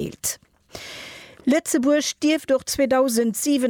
gedeelt. Lëtzebuerg dierft och 2027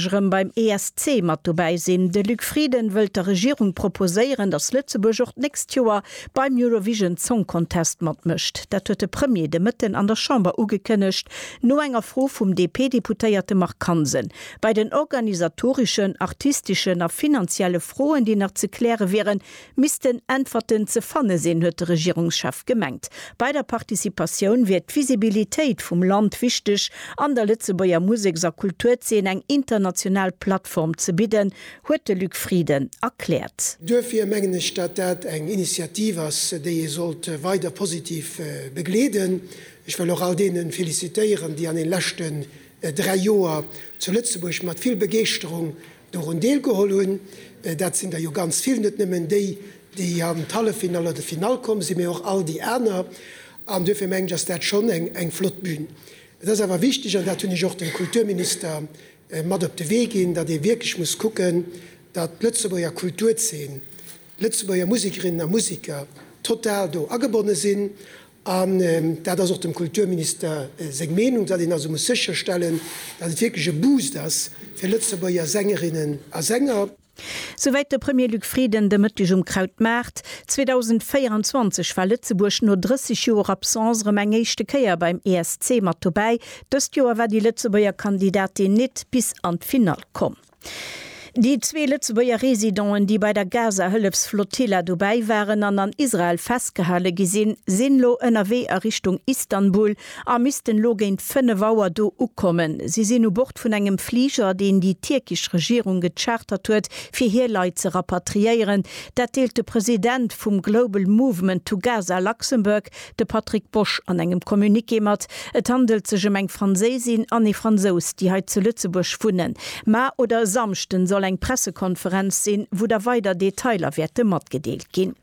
erëm beim ESC mat dobäi sinn. De Luc Frieden wëllt der Regierung proposéieren, datt Lëtzebuerg och d'nächst Joer beim Eurovision Song Contest matmécht. Dat huet de Premier de Mëtten an der Chamber ugekënnegt, no enger Fro vum DP-Deputéierte Marc Hansen. Bei den organisatoreschen, artisteschen a finanzielle Froen, déi nach ze kläre wieren, Missten Äntwerten ze fanne sinn, huet de Regierungschef gemengt. Bei der Participatioun wier d'Visibilitéit vum Land wichteg. An der Lëtzebuerger Museks a Kulturzeen eng international Plattform ze bidden, huet de Luc Frieden erkläert. Duerfir mengen ech, datt dat eng Initiativ ass, déi ee sollt weider positiv begleeden. Ech wëll och all deene felicitéieren, déi an den leschten dräi Joer zu Lëtzebuerg mat vill Begeeschterung dorun deelgeholl hunn. Dat sinn der jo ganz vill, net nëmmen déi, déi an d'Halleffinall oder d'Finall komm sinn, mee och all déi aner. An duerfir mengen ech, ass dat schonn eng flott Bühn. Et ass awer wichteg, an dat hunn ech och dem Kulturminister mat op de Wee ginn, datt ee wierklech muss kucken, datt d'Lëtzebuerger Kulturzeen, d'Lëtzebuerger Musikerinnen a Musiker total do agebonne sinn. An dat ass och dem Kulturminister seng Meenung, datt een also muss sécherstellen, datt et wierklech e Boost ass fir Lëtzebuerger Sängerinnen a Sänger. Souwäit de Premier Luc Frieden de Mëtteg um Krautmaart. 2024 war Lëtzebuerg no 30 Joer Absence erëm eng éischte Kéier beim ESC mat dobäi. Dëst Joer war déi Lëtzebuerger Kandidatin nit bis an d'Finall komm. Déi zwee Lëtzebuerger Residenten, déi bei der Gaza-Hëllefsflotilla dobäi waren an an Israel festgehale gi sinn, sinn elo ënnerwee a Richtung Istanbul a missten elo géint 5 Auer do ukommen. Si sinn u Bord vun engem Fliger, deen déi tierkesch Regierung gechartert huet, fir hir Leit ze rapatriéieren. Dat deelt de President vum Global Movement to Gaza Luxembourg, de Patrick Bosch an engem Communiqué mat. Et handelt sech ëm eng Franséisin an ee Fransous, déi hei zu Lëtzebuerg wunnen. Ma oder e Samschden soll eng Pressekonferenz sinn, wou da weider Detailer wäerte matgedeelt ginn.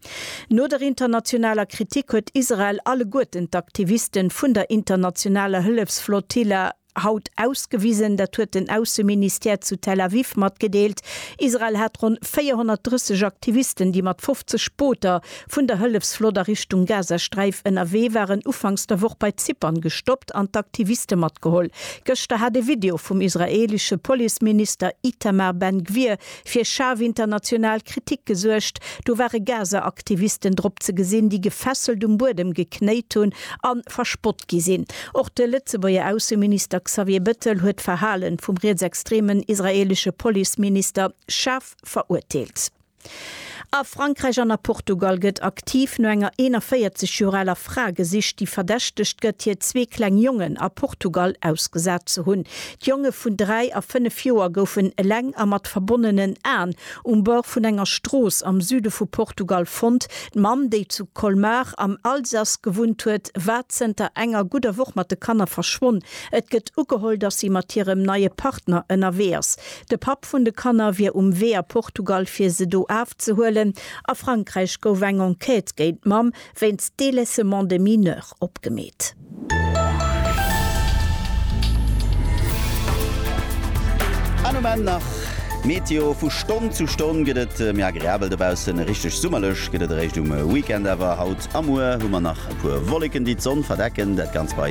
No der internationaler Kritik huet Israel alleguerten d'Aktiviste vun der internationaler Hëllefsflotilla, haut ausgewisen. Dat huet den Ausseministère zu Tel Aviv matgedeelt. Israel hat ronn 430 Aktivisten, déi mat 50 Booter vun der Hëllefsflott a Richtung Gazasträif ënnerwee waren, ufanks der Woch bei Zypern gestoppt an d'Aktiviste matgeholl. Gëschter hat e Video vum israeelesche Policeminister Itamar Ben-Gvir fir schaarf international Kritik gesuergt, do ware Gaza-Aktivisten drop ze gesinn, déi gefesselt um Buedem geknéit hunn a verspott gi sinn. Och de Lëtzebuerger Ausseminister Xavier Bettel huet d'Verhalen vum rietsextremen israelesche Policeminister schaarf verurteelt. A Frankräich an a Portugal gëtt aktiv no enger 41 Joer aler Fra gesicht, déi verdächtegt gëtt, hir zwee kleng Jongen a Portugal ausgesat ze hunn. D'Jonge vun 3 a 5 Joer goufen eleng a mat verbonnenen Aen um Bord vun enger Strooss am Süde vu Portugal fonnt. D'Mamm, déi zu Colmar am Alsace gewunnt huet, war zënter enger gudder Woch mat de Kanner verschwonn. Et gëtt ugeholl, dass si mat hirem neie Partner ënnerwee ass. De Papp vun de Kanner wier um Wee a Portugal fir se do afzehuelen. A Frankräich gouf eng Enquête géint d'Mamm wéinst délaissement de mineur opgemeet. An um Enn nach d'Meteo, Vu Stonn zu Stonn gëtt et méi agreabel dobaussen, richteg summerlech gëtt et eréischt um Weekend awer. Haut a muer hu mer nach e puer Wolleken, déi d'Sonn verdecken, dat Ganzt bei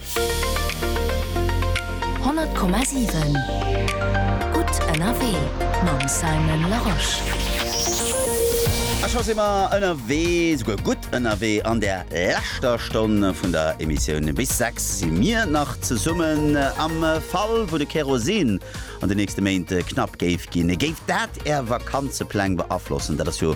100,7 Gutt ënnerwee mam Simon Larosche. A scho si mer ënnerwee, souguer gutt ënnerwee. An der leschter Stonn vun der Emissioun bis 6 si mir nach zesummen. Am Fall wou de Kerosin an de nächste Méint knapp géif ginn, géif dat Är Vakanzepläng beaflossen? Dat ass jo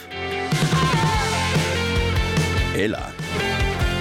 Hela.